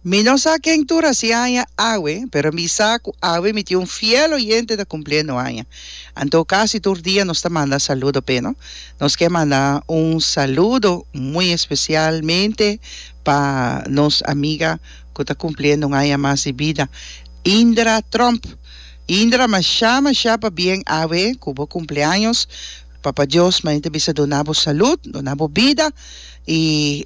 Mi no sa ken tur a si aña awe, pero mi sa cu awe mi tin un fiel oyente ta cumpliendo aña. Anto casi tur dia nos ta manda saludo p'e, no? Nos kier manda un saludo muy especialmente pa nos amiga cu ta cumpliendo un aña mas di bida, Indra Tromp. Indra masha masha pa bien awe cu bo cumpleaños papa Dios main ta bisa duna bo salud duna bo bida y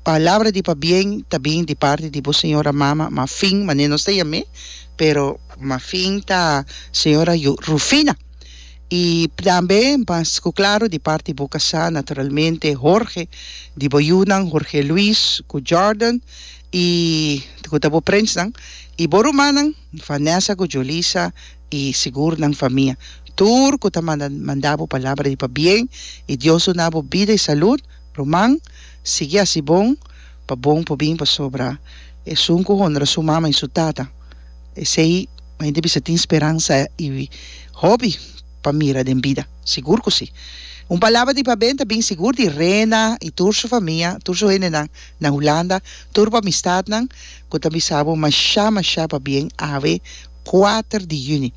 palabra di pa bien ta bin di parti di bo señora mama ma fin mane nos ta yam'e pero ma fin ta señora Rufina y tambe mas cu claro di parti bo casa naturalmente Jorge di bo yunan Jorge Luis cu Jordan I te cu ta bo prensnan i bo rumannan, Vanessa cu Julissa, i sigur nan famia, tur cu ta manda manda bo palabra di pabien, i Dios duna bo bida i salud, ruman, sigui haci bon, pa bon por bin, pasobra esun cu honra su mama i su tata, esey bai ta bisa tin speransa i hopi pa mira den bida, sigur cu si, un palabra di pabien ta bin sigur di Rena i tur su famia, tur su hendenan. Na Hulanda, tur bo amistatnan ku ta bisa bo mashá mashá pabien ave kuater di yüni.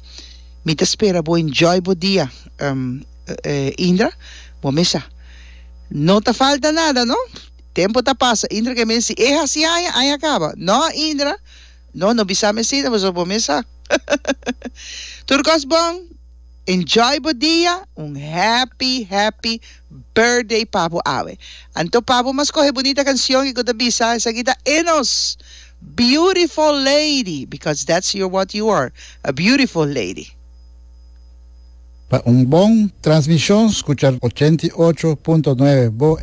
Mi ta spera bo enjoy bo dia, Indra. Bo mes sa. No ta falta nada, no? Tempu ta pasa, Indra ke men si, E hasi aña, aña kaba. No, Indra. No, no bisami asina, pasobra bo mes sa. Tur kos bon. Enjoy bo dia, un happy happy birthday pa bo awe. Anto pa bo mas coge bunita cancion y cu ta bisa esaki ta Enos beautiful lady because that's your what you are a beautiful lady. Pa un bon transmision scucha ochenta i ocho punto nuebe Bo